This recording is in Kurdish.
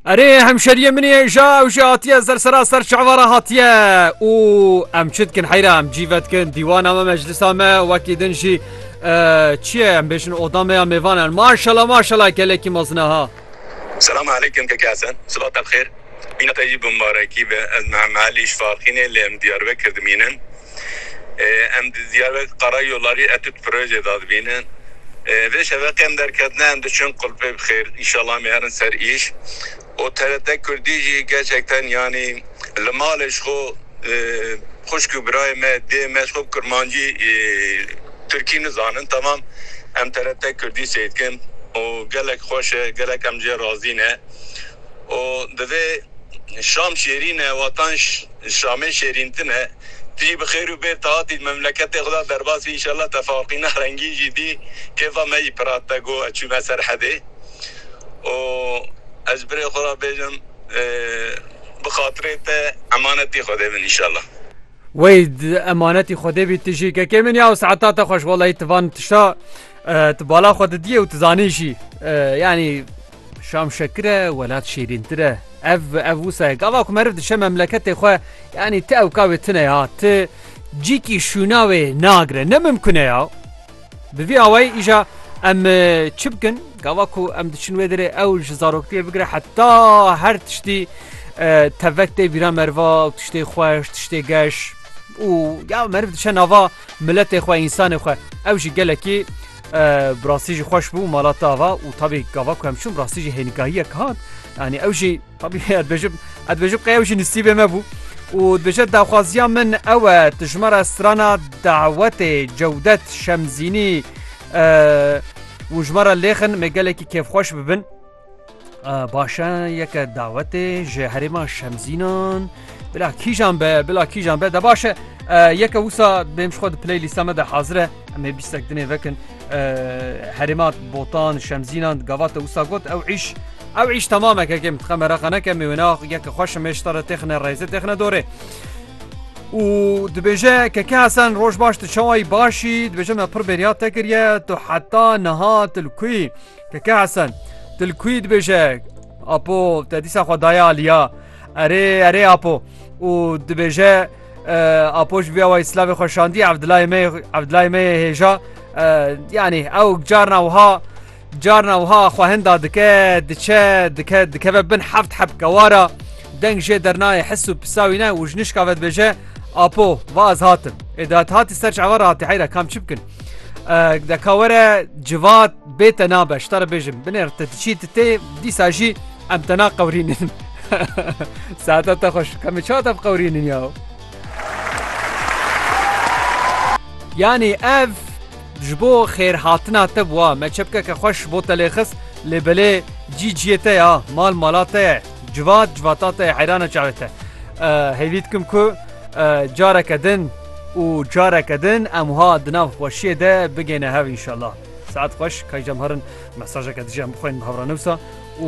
Erê hemşeriye min ê ja ew jî hatiye sersera ser çavara hatiye û em çi dikin heyra em cîve dikin dîwana me meclisa me wekî din jî çi ye em bêjin oda me ya mêvan en maşala maşala gelekî mezine ha Selam aleykum keke Hesen silat te bi xêr bîne te jî bi mibarekî be ez Mehemmelî ji Farxînê lê em Diyarbekir dimînin Em di Diyarbekir Karayolarî etüt projeyê de dibînin. Vê şeveqê em derketine em diçin qulpê bi xêr înşallah em ê herin ser îş û TRT Kurdî jî gerçekten yanî li malê ji xwe xwişk û birayê me dê me ji xwe bi kirmancî tirkî nizanin temam em TRT Kurdî sêr dikin û gelek xweş e gelek em ji ye razî ne û divê şam şêrîn e watan Şamê şêrîn tune. Tijî bi xêr û bêr te hatî memleketê xwe de derbas bî înşallah tefaqîna rengîn jî dî kêfa me jî pirat te got ez çûme ser hedê û ez birê xwe re bêjim bi xatirê te emanetî xwedê bin înşallah. Weyd emanetî xwedê bî tijî kekê min ya û siheta te xweş wellahî ti van tişta ti bala xwe didiyê û ti zanî jî yanî Şam şekir e, welat şêrîntir e. Ev ev wisa ye. Gava ku meriv dişe memleketê xwe yanî ti ewka wê tune ya. Ti cîkî şûna wê nagire. Ne mimkune ya. Bi vî awayî îja em e, çi bikin? Gava ku em diçin wê derê ew ji zaroktiyê bigire heta her tiştî e, tevek tê bîra meriva û tiştê xweş, tiştê geş û ya meriv dişe nava miletê xwe, însanê xwe. Ew jî gelekî Bi rastî jî xweş bû mala te ava û tabî gava ku em çûn bi rastî jî hênîgahiyek hat yanî ew jî tabî dibêjim ez dibêjim qey ew jî nisîbê me bû û dibêje daxwaziya min ew e tu ji me re strana dawetê cewdet şemzînî û ji me re lêxin me gelekî kêfxweş bibin. Baş e yeke dawetê ji herêma Şemzînan bila kîjan be bila kîjan be de baş e yeke wisa bêm ji xwe di playlîsta me de hazir e em ê bîstek dinê vekin herêma botan Şemzînan gavate wisa got ew îş ew îş temameke kêm dixem meraq neke me wêna yeke xweş me ji tara têxine rêze têxine dorê û dibêje keke hesen roj baş tu çawayî başî dibêje me pir bêriya te kiriye tu heta niha til kuyî Keke Hesen, tu li kuyî dibêje? Apo, te dîsa xwe daye aliya? Erê, erê Apo. Û dibêje, Apo ji vê awayî silavê xwe şandî, Evdilayê me, Evdilayê me yê hêja, yanî ew carna wiha, carna wiha xwe hinda dike, diçe, dike, dikeve bin heft heb kewara, deng jê dernayê his û pisa wî ne û ji nişka ve dibêje, Apo, va ez hatim. Ê di hatî ser çavan re hatî heyra, kam çi bikin? Deka were civat bê te nabe ji te re bêjim binêr te diçî tu tê dîsa jî em te naqewrînin Saeta te xweş kemê çiwa te biqewrînin ya Yanî ev ji bo xêrhatina te bûa me çepkeke xweş bo te lê xist lê belê cî ciyê te ya mal mala te ye Civat civata te heyrana çavê te. Hêvî dikim ku careke din û careke din em wiha di nav xweşiyê de bigêne hev inşallah. Saet xweş kaycem herin mesajeke dijî em bixwên bi hevranivsa û